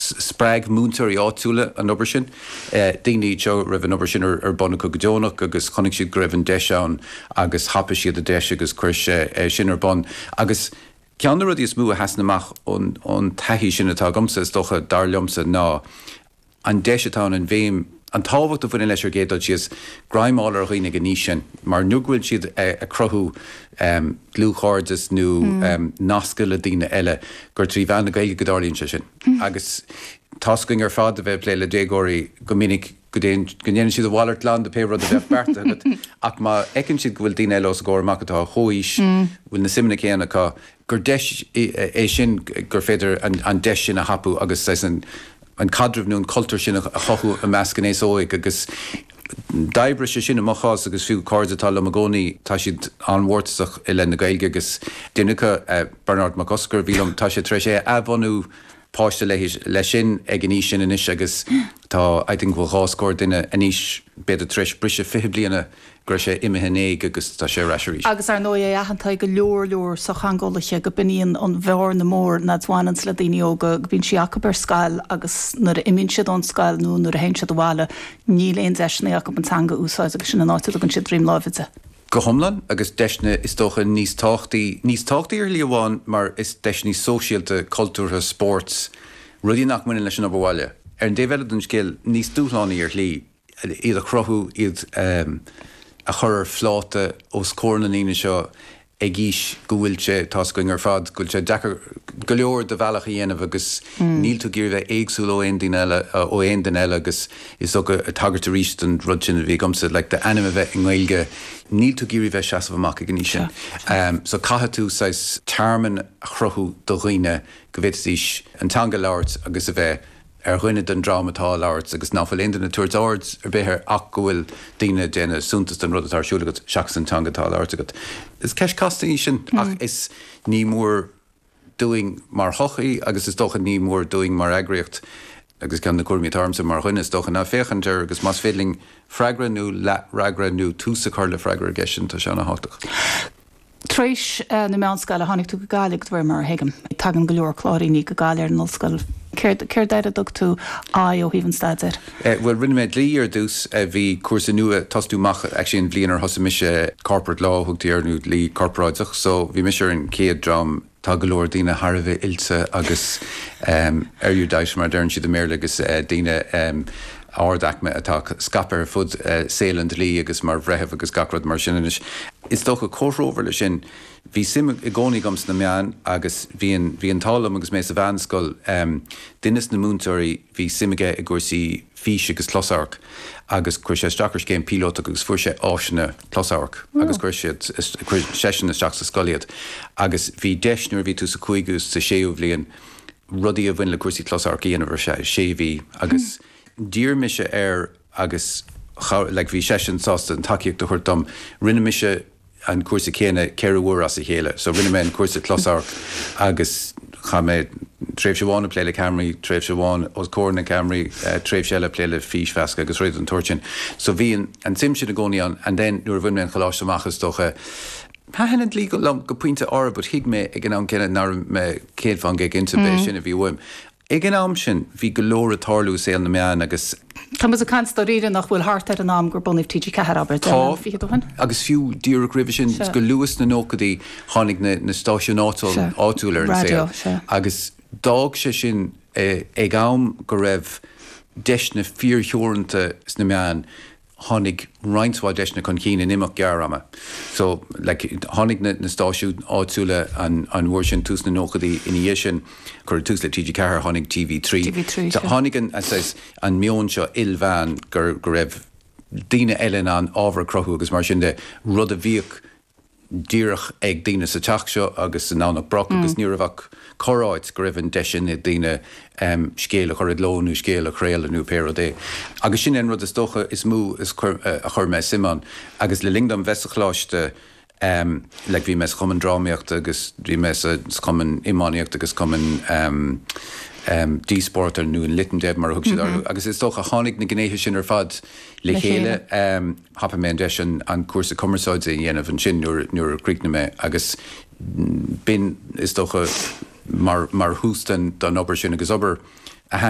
Spreag múinteoirí áitiúla an obair sin. Daoine iad seo a raibh an obair sin ar bun acu go deonach agus chonaic siad go raibh an deis ann agus thapaigh siad an deis agus chuir sé sin ar bun. Agus ceann de na rudaí is mó a sheasann amach ón taithí sin atá agamsa, is dócha, dar liomsa, ná an deis atá ann, an bhéim, An tábhacht a bhaineann leis ar gcéad dul síos, greim fháil ar dhaoine ag an aois sin mar nó go bhfuil siad ag cruthú dlúthchairdeas nó nascadh le daoine eile gur trí mheán na Gaeilge go dtarlaíonn sé sin agus tá's againn ar fad a bheith ag plé le déagóirí go minic go dtéann, go ndéanann siad a mhalairt glan de pé rud a bheadh beartaithe agat ach má fheiceann siad go bhfuil daoine eile os a gcomhair amach atá ar chomhaois, bhfuil na suimeanna céanna acu, gur deis é sin gur féidir an deis sin a thapú agus saghas an caidreamh nó an cultúr sin a chothú i measc an aos óig agus d'oibrigh sé sin i mo chás agus fiú cairde atá liom i gcónaí tá siad an-mhórtasach i leith na Gaeilge agus duine acu, Bearnárd Mac Oscair, a bhí liom, tá sé tar éis é a athbhunú páiste le, leis sin ag an aois sin anois agus tá I think go bhfuil dhá scór duine anois b'fhéidir tar éis briseadh fiche bliana go raibh sé imithe in éag agus tá sé ar ais arís. Agus, ar ndóigh, é aitheanta ag go leor, leor sochtheangeolaithe go b'in í an bhearna mhór mar a bhaineanns le daoine óga, go mbíonn sí acub ar scoil agus nuair a imíonn siad ón scoil nó nuair a théann siad abhaile níl aon deiseanna acub an teanga a úsáid agus sin an áit a dtugann siad droim láimhe di. go hiomlán agus deiseanna is dócha níos tábhachtaí, níos tábhachtaí ar shlí amháin mar is deiseanna sóisialta, cultúrtha, spóirt, rudaí nach mbaineann leis an obair bhaile, ar an dtaobh eile den scéal, níos dúshlánaí ar shlí, iad a chruthú, iad a chur ar phláta os comhair na ndaoine seo ag aois go bhfuil sé, tá's againn ar fad, go bhfuil sé deacair go leor do bhealach a dhéanamh agus níl tú ag iarraidh bheith éagsúil ó aon duine eile agus. is ag, ag tagairt arís don rud sin a bhí agamsa like d'ainm a bheith i nGaeilge níl tú ag iarraidh bheith seasamh amach ag an aois sin so caithfidh tú saghas tearmann a chruthú do dhaoine go bhféadfaidís an teanga a labhairt agus a bheith ar dhuine den dream atá á labhairt agus ná fuil aon duine ag tabhairt aird ar bith air ach go bhfuil daoine ag déanamh suntas den rud atá ar siúl agat seachas an teanga atá á labhairt agat. Is ceist casta í sin ach is, ní mór. dúinn mar shochaí agus is dócha ní mór dúinn mar eagraíocht agus ceann na cúraimí atá ormsa mar dhuine is dócha ná féachaint air agus más féidir linn freagra nó leath fhreagra nó tús a chur le freagra ar gceist sin tá sé ana thábhachtach. Tar éis na meánscoile a tháinig tú go Gaillimh de réir mar a thuigim. Tagann go leor Cláiríneach go Gaillimh ar an ollscoil. Céard air a dtug tú aghaidh ó thaobh an staidéir? Eh bhuel rinne mé dlí ar dtús, eh bhí cúrsa nua, ag tosú amach actually an bhliain ar thosaigh mise, corporate law a thugtaí air nó dlí corporáideach, so bhí mise ar an chéad dream, tá go leor daoine thar a bheith oilte agus em erudite mar a deireann siad i mBéarla agus eh daoine em ardaicme atá scaipthe ar fud eh saol an dlí agus mar bhreithimh agus gach rud mar sin anois is dócha comhthreomhar leis sin, Bhí suim i gcónaí agam sna meáin agus bhí an bhí an t-ádh liom agus mé sa mheánscoil, duine sna múinteoirí bhí suim aige i gcúrsaí físe agus closamhairc agus chuir sé isteach ar scéim phíolótach agus fuair sé áiseanna closamhairc agus chuir siad, chuir seisean isteach sa scoil iad agus bhí deis nuair a bhí tú sa chúigiú 's sa séú bhliain rudaí a bhain le cúrsaí closamhairc a dhéanamh ar feadh sé mhí agus d'iarr mise air a agus cha, like, bhí seisean sásta an tacaíocht a thabhairt dom. Rinne mise an cúrsa céanna ceithre uair as a chéile. So rinne mé an cúrsa closamhairc agus chaith mé tréimhse amháin ag plé le ceamaraí, tréimhse amháin os comhair na gceamaraí, tréimhse eile ag plé le físmheascadh agus rudaí den tsórt sin. So bhí an tsuim sin i gcónaí ann and then nuair a bhain mé an coláiste amach is dócha, thaitin an dlí liom go pointe áirithe but thuig mé ag an am céanna nach raibh mé céad faoin gcéad cinnte arbh é sin a bhí uaim. Ag an am sin bhí go leor ag tarlú i saol na meán agus. Tá muid ag caint dáiríre nach bhfuil thart ar an am gur bunaíodh TG4, abair, deich mbliana fichead ó shin. Agus fiú díreach roimhe sin, go luath sna nóchaidí tháinig na stáisiúin áitiúla ar an saol agus d'fhág sé sin ag am go raibh deiseanna fíor-theoranta sna meáin. tháinig roinnt mhaith deiseanna chun cinn in imeacht gearr ama. So, like, tháinig na, na stáisiúin áitiúla an, an uair sin, tús na nóchaidí. Ina dhiaidh sin, cuireadh tús le TG Ceathair, tháinig TV Trí. TV Trí, So, sure. tháinig an, an saghas, an meon seo ilmheán gur, go raibh daoine eile in ann ábhar a chruthú agus mar sin de, rud a bhíodh díreach ag daoine sa teach seo agus i nDomhnach Broc agus ní raibh ach corr-áit go raibh an deis ann ag daoine scéal a chur i gcló nó scéal a chraoladh nó pé rud é. Agus sin é an rud is dócha is mó a chuir mé suim ann. Agus le linn dom bheith sa choláiste, like bhí mé sa Chumann Drámaíochta agus bhí mé sa Chumann Iománaíochta agus Cumann Díospóireachta nó an Lit 'n' Deb mar a thug siad orthu agus is dócha tháinig na gnéithe sin ar fad le chéile. thapaigh mé an deis an cúrsa cumarsáide a dhéanamh ansin nuair a chríochnaigh mé agus b'in, is dócha, mar thús don obair sin agus obair a thaitin